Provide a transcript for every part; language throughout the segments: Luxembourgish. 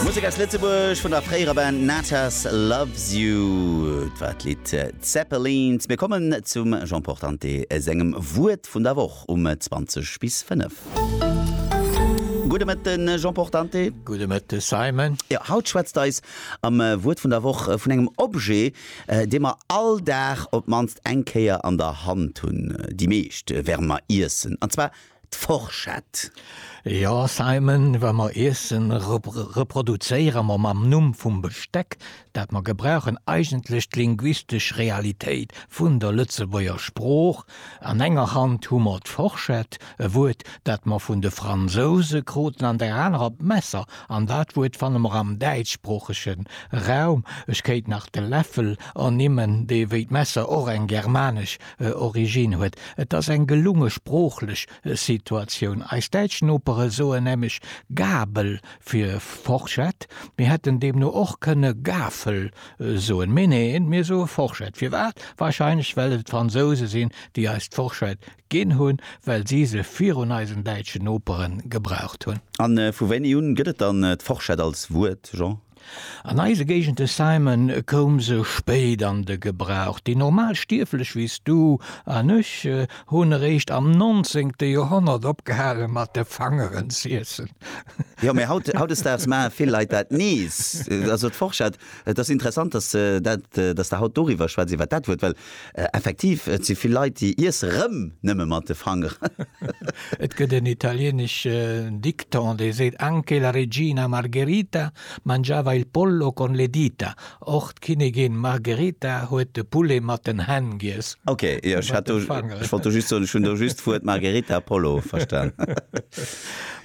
Musek aus Lëtzebuerg vun der fréierer Band Natas Loves You. Et war d'Lidd Zeppelins. Mir kommen zum Jean Portante sengem Wuert vun der Woch um 20 bis 5. Gudde Mëtten, Jean Portante. Gudde Mëtte, Simon. Jo, haut schwätzt eis am Wuert vun der Woch vun engem Objet, dee mer all Dag op d'mannst eng Kéier an der Hand hunn, déi meescht, während mer iessen, an zwar d'Forschett. Jo Simon, wa mer Iessen reproduzéiere mer mam Numm vum Besteck, dat mer gebrauchen, eigentlech d'linguistesch Realitéit vun der Lëtzebuerger Sprooch. An enger Hand hu mer d'Forschett, e Wuert, dat mer vun de Fransouse kruten, an der anerer d'Messer, an dat Wuert fanne mer am däitschsproochege Raum. Ech kéint nach de Läffel ernimmen, dee wéi d'Messer och eng germanesch Origine huet. Et ass eng gelunge sproochlech Situatioun. Eis däitsch Nopere soen nämlech Gabel fir Forschett. Mir hätten deemno och kënne Gafel soen. Mee neen, mir soe Forschett. Firwat? Warscheinlech well et d'Fransouse sinn, déi eis d'Forschett ginn hunn, well si se virun eisen däitschen Nopere gebraucht hunn. A vu wéini un gëtt et dann d'Forschett als Wuert, Jean? An eise Géigende Simon koum se spéit an de Gebrauch. Déi normal Stierflech wéi s du an ech hunn eréischt am nonzéngte Joerhonnert opgehale mat de Fangeren z'iessen. Jo, mä haut, hautdesdaags maache vill Leit dat nees. Also d'Forschert, et ass interessant, dass, dat, dass der haut doriwwer schwätz, iwwer dat Wuert, well Effektiv, et si vill Leit, déi iesse rëm nëmme mat de Fanger. Et gëtt en italieneschen Dikton, dee seet, Anche la regina Margherita mangiava il pollo con le dita, Och d'Kinnigin Margherita huet de Poulet mat den Hänn giess. Ok, jo, ech hat do, ech wollt do just soen, ech hunn do just d'Wuert Margherita a Pollo verstan.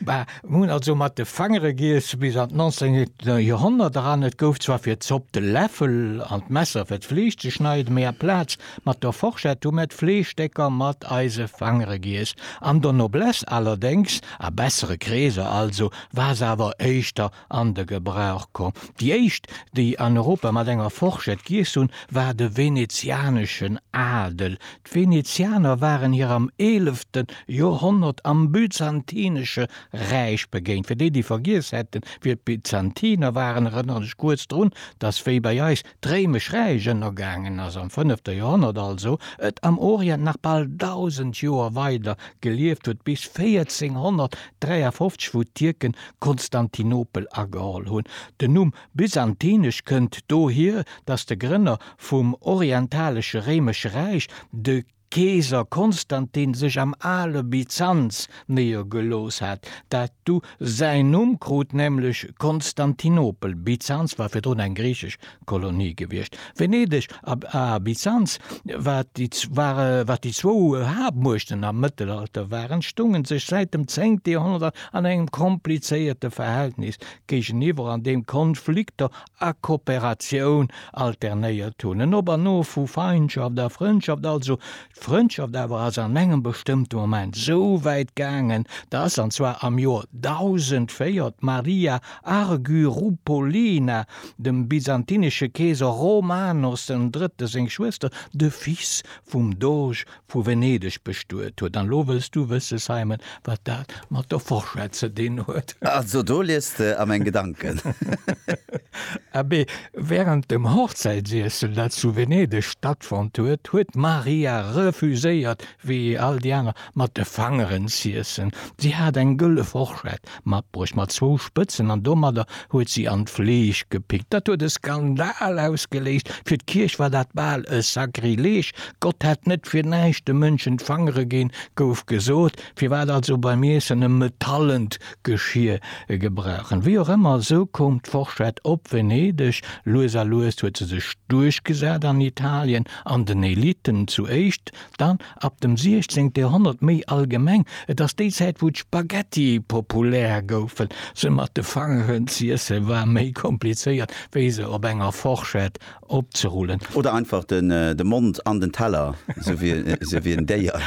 Bah. Mir hunn also mat de Fangere giess bis an d'nonzéngte Joerhonnert eran. Et gouf zwar fir d'Zopp de Läffel an d'Messer fir d'Fleesch ze schneiden, mee aplaz mat der Forschett hu mir d'Fleeschstécker mat eise Fangere giess. An der Noblesse allerdéngs, a bessere Kreeser also, war se awer éischter an de Gebrauch komm. Déi éischt, déi an Europa mat enger Forschett giess hunn, war de venezianeschen Adel. D'Venezianer waren hir am eelefte Joerhonnert am Byzantinesche Räich begéint. Fir déi, déi vergiess hätten, wie d'Byzantiner waren, erënneren ech kuerz drun, dass, wéi bei eis d'Réimesch Räich ënnergaangen ass, am fënnefte Joerhonnert also, et am Orient nach bal dausend Joer weider gelieft huet, bis 1453, wou d'Tierken Konstantinopel ageholl hunn. Den Numm Byzantinesch kënnt dohier, datt de Grënner vum orientalesche Réimesche Räich, de Keeser Konstantin, sech am ale Byzanz néiergelooss hat, dat du säin Numm krut, nämlech Konstantinopel. Byzanz war virdrun eng griichesch Kolonie gewiescht. Venedeg a Byzanz, wat déi zwou Haaptmuechten am Mëttelalter waren, stounge sech säit dem zéngte Joerhonnert an engem komplizéierte Verhältnis géigeniwwer an deem Konflikter a Kooperatioun alternéiert hunn, en Op an Of vu Feindschaft a Frëndschaft, also d'Frëndschaft awer ass an engem bestëmmte Moment esou wäit gaangen, dass, an zwar am Joer 1004, d'Maria Argyroupolina dem byzantinesche Keeser Romanos den Drëtte seng Schwëster, de Fils vum Doge vu Venedeg bestuet huet. An lo wëlls du wësse, Simon, wat dat mat der Fourchette ze dinn huet? Also do liest de a meng Gedanken. Abee, wärend dem Hochzäitsiessel, dat zu Venedeg stattfonnt huet, huet d'Maria refuséiert, wéi all déi aner, mat de Fangeren z'iessen. Si hat eng gëlle Fourchette Matbruecht mat zwou Spëtzen an domadder huet si an d'Fleesch gepickt. Dat huet e Skandal ausgeléist. Fir d'Kierch war dat bal e Sakrileg. Gott hätt net fir näischt de Mënschen d'Fangere ginn, gouf gesot. Firwat also beim Iessen e metallent Geschier gebrauchen? Wéi och ëmmer, esou koum d'Forschett op Venedeg. Lues a lues huet se sech duerchgesat an Italien, an den Elitten zu éischt. Dann ab dem 16 Joerhonnert méi allgemeng, et ass déi Zäit wou d'Spaghetti populär goufen. Se mat de Fangeren z'iessen war méi komplizéiert wéi se op enger Forschett opzerullen. Oder einfach de Mond an den Teller, sou wéi en Déier.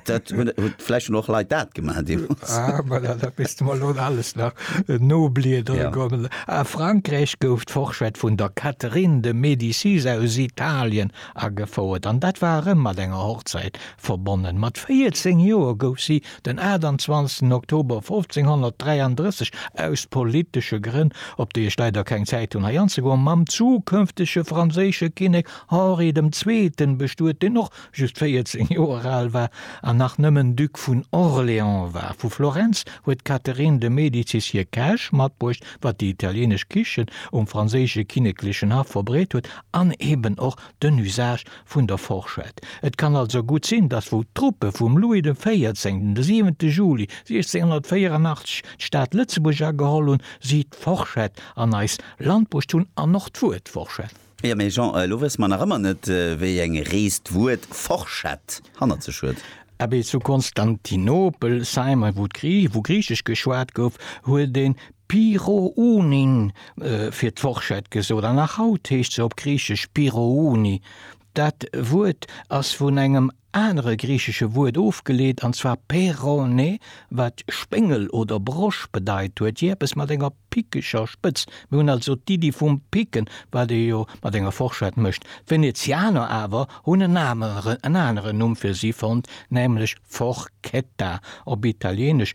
Dat huet, vläicht hunn och Leit dat gemaach deemools. Ah voilà, da misst de mer elo alles nach nobliedere kommen. A Frankräich gouf d'Forschett vun der Catherine de Médicis aus Italien Agefouert, an dat war erëm mat enger Hochzäit verbonnen. Mat 14 Joer gouf si den 28 Oktober 1533 aus politesche Grënn, op déi ech leider keng Zäit hunn hei anzegoen, mam zukënftege franséische Kinnek Henri dem Zweeten bestuet, deen och just 14 Joer al war an nach nëmmen Duc vun Orléans war. Vu Florenz huet d'Catherine de Medicis hir Käch matbruecht, wat déi italienesch Kichen um franséische kinneklechen Haff verbreet huet, An eben och den Usage vun der Forschett. Et kann also gutt sinn, datt wou d'Truppe vum Louis de Véierzéngten de 7. Juli 1684 d'Stad Lëtzebuerg ageholl hunn, si d'Forschett an eis Land bruecht hunn an och d'Wuert Forschett. Jo, mee Jean, elo wësse mer nach ëmmer net, wéi eng Rees d'Wuert Forschett hannert sech huet. Abee, zu Konstantinopel, Simon, wou Griichesch geschwat gouf, huet ee Pyrrhounin fir d'Forschett gesot an nach haut heescht se op Griichesch Pyrrhouni. Dat Wuert ass vun engem anere griichesche Wuert ofgeleet, an zwar pei'rhone, wat Spéngel oder Brosch bedeit huet, jee eppes mat enger pickeger Spëtz. Mir hunn also d'Iddi vum Picken, wat ee jo mat enger Forschett mécht. D'Venezianer awer hunn en aneren Numm fir si fonnt, nämlech Forchetta, op Italieenesch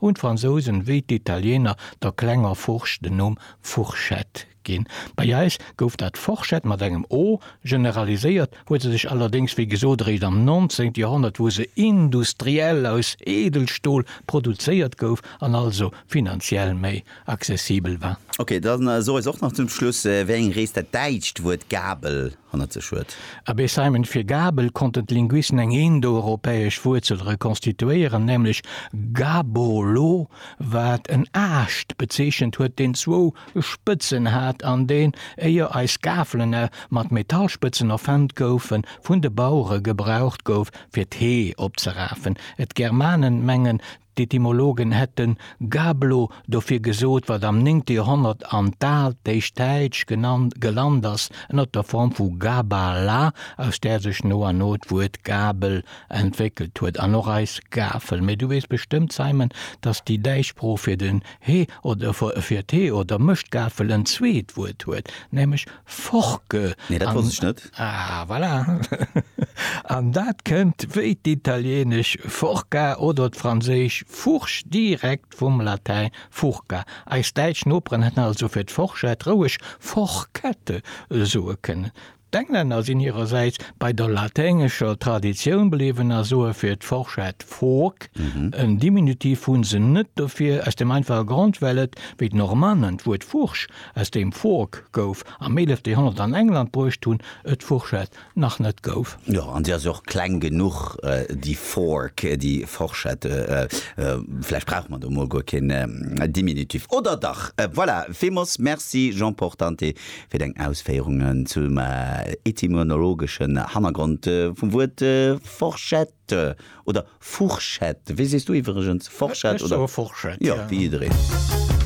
Hunn d'Fransousen wéi d'Italiener der klenger Furscht den Numm Fourchette ginn. Bei eis gouf dat Forschett mat engem o, generaliséiert huet se sech allerdéngs wéi gesot eréischt am 19. Joerhonnert, wou se industriell aus Eedelstol produzéiert gouf an also finanziell méi accessibel war. Ok, da so eis och nach zum Schluss, wéi eng Rees dat däitscht Wuert Gabel hannert sech huet. Abee Simon, fir Gabel konnten d'Linguisten eng indoeuropäesch Wuerzel rekonstituéieren, nämlech gabo lo, wat en Aascht bezeechent huet, deen zwou Spëtzen hat an deen, éier eis Gafelen mat Metallspëtzen erfënnt goufen, vun de Bauere gebraucht gouf, fir d'Hee opzerafen. D'Germanen mengen, D'Etymologen hätten Gablo dofir gesot, wat am néngte Joerhonnert an d'altéischt Däitsch gelant ass, ënnert der Form vu gaba la, aus där sech no an no d'Wuert Gabel entwéckelt huet, an och eis Gafel. Mee du weess bestëmmt, Simon, dass déi däitsch Sprooch fir den he oder fir d'hee oder Mëschtgafel en zweet Wuert huet, nämlech Forke. Nee, dat wosst ech net. Ah, voilà! An dat kënnt, wéi d'italieenesch Forca oder d'franséisch Fourche, direkt vum Latäin furca. Eis däitsch Noperen hätten also fir d'Forschett roueg Forkette soe kënnen. D'Englänner sinn hirersäits bei der laténgescher Traditioun bliwwen a soe fir d'Forschett fork, en Diminutiv hu se net dofir, aus dem einfache Grond, well et, wéi d'Normannen d'Wuert Fourche Aus deem Fork gouf am 11 Joerhonnert an England bruecht hunn, et d'Fourchette nach net gouf. Jo, an si ass jo och kleng genuch, déi Fork, déi Forschette. Vläicht brauche mer do mol guer keen Diminutiv, oder dach? Voilà, villmools merci Jean Portante fir deng Ausféierungen zum etymonologeschen Hannergrond vum Wuert Forschette, oder Fourchette, wéi sees du iwwregens? Forschette oder? Ech soe Forschette, jo. Jo, wéi jiddereen.